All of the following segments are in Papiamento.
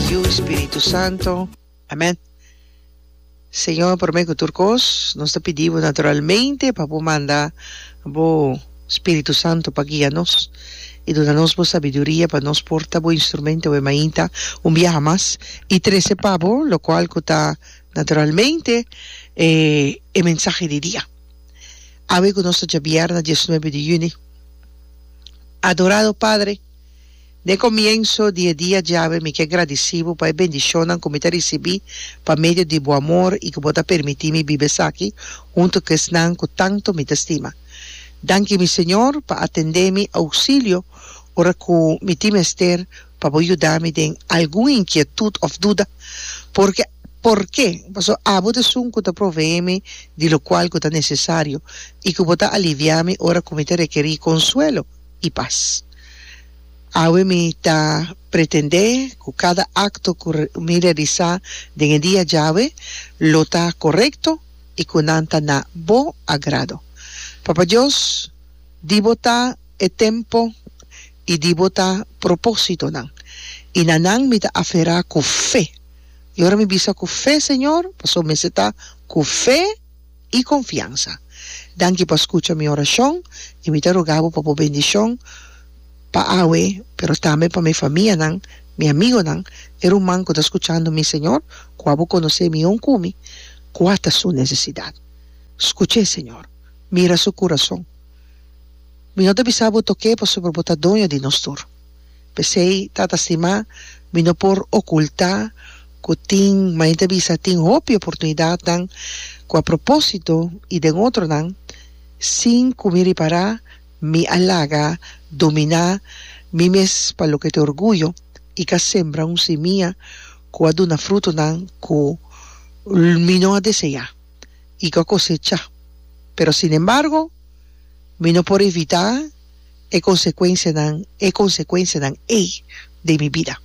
Yu Spiritu Santo. Amen. Señor, prome cu tur cos, nos ta pidi Bo naturalmente pa Bo manda Bo Spiritu Santo pa guia nos y duna nos Bo sabiduria pa nos por ta Bo instrumentoe mainta un biaha mas y trece pa Bo locual cu ta naturalmente e e mensahe di dia. Awe cu nos ta djabier na diesnuebe di juni. Adorado Padre. N'e comienso di e dia djawe mi kier gradici bo pa e bendicionnan cu mi ta ricibi pa medio di bo amor y cu bo ta permiti mi biba esaki hunto cu esnan cu tanto mi ta stima. Danki mi Señor pa atende mi auxilio ora cu mi tin mester pa bo yuda mi den algun inquietud of duda porque porque paso abo t'esun cu ta provee mi di locual cu ta necesario y cu bo ta alivia mi ora cu mi ta requeri consuelo. i pas. Awe mi ta pretendé ku kada akto ku mi realisá den e dia djawe lo ta korekto i ku nan ta na Bo agrado. Papa Dios, di Bo ta e tempu i di Bo ta propósitonan, i na nan mi ta aferá ku fe. I ora mi bisa ku fe, Señor, pasobra mester ta ku fe. i konfiansa. Danki pa skucha mi orashon i mi ta roga bo pa bo bendishon pa awe pero tambe pa mi famianan, mi amigonan, e ruman ku ta skuchando mi, señor, ku abo konosé mi hon kumi, kua ta su nesesidat. Skuch'é, señor. Mira su kurason. Mi no ta bisa bo tok'é pasobra bo ta doño di nos tur. P'esei, tata stimá, mi no por okultá ku tin, main ta bisa, tin hopi oportunidatnan ku a propósito i den otronan, sin ku mi ripará, mi a laga dominá mi mes pa loke ta orguyo i ka sembra un simia ku a duna frutunan ku mi no a deseá i ku a kosechá. Pero sinembargo, mi no por evitá. e consecuencianan, e consecuencianan ey den mi bida.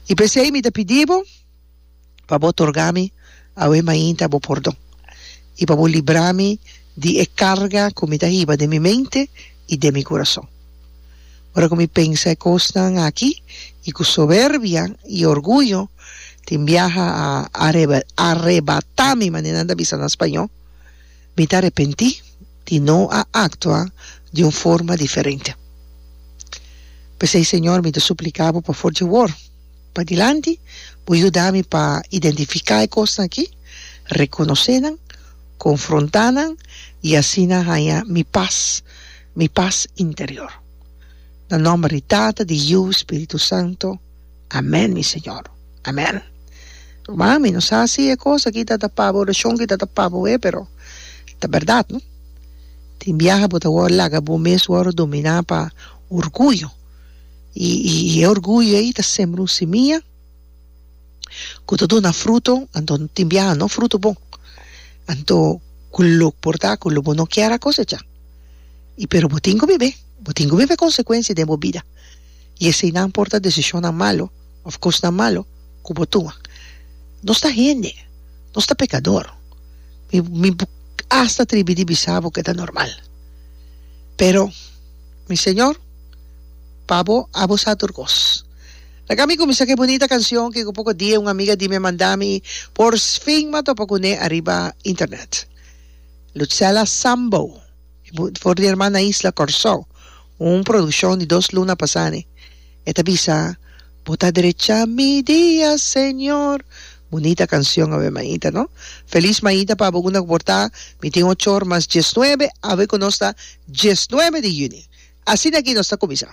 Y p'esey mi ta pidi bo pa bo torga mi awe mainta bo pordon, y pa bo libra mi di e carga cu mi ta hiba den mi mente y den mi curason. Ora cu mi pensa e cosnan aki, y cu soberbia y orguyo tin biaha a arrebata mi, manera nan ta bisa na Spañó, Mi ta repentí di no a actua di un forma diferente. P'esei, Señor, mi ta suplica Bo pa for dje wor padilanti Bo yuda mi pa identifica e cosnan aki, reconoce nan, confronta nan y asina haya mi paz, mi paz interior. Na nomber di Tata, di Yu, Spiritu Santo. Amen mi Señor amen. Ruman mi no sa si e cos aki ta tapa bo oracion ki ta tapa bo e pero ta berdad no tin biaha bo ta wor laga bo mes wor domina pa orguyo y y e orguyo ey ta sembra un semia cu ta duna fruto anto tin biaha no fruto bon anto cu lo por ta cu lo bo no kier a cosecha y pero bo tin cu bibe bo tin cu bibe consecuencia den bo bida. i eseinan por ta desishonnan malu òf kosnan malu ku bo tuma. Nos ta hende, nos ta pekador. Mi mi por asta atribi di bisa bo ku e ta normal. Pero, mi Señor, pa bo abo sa tur kos. Laga mi kuminsá ku e bunita kanshon ku ku poko dia un amiga di mi a manda mi i porfin mi a topa kuné ariba internet. Lutzela Sambo, for di herman na isla Kòrsou. Un produccion di dos luna pasá ni. E ta bisa, Bo ta drecha mi dia, Señor. Bunita cancion, awe Maita, no? Feliz Maita pa bo una cu por ta, mi tin ochor mas diesnuebe, awe cu nos ta diesnuebe di juni. Asina aki nos ta cuminsá.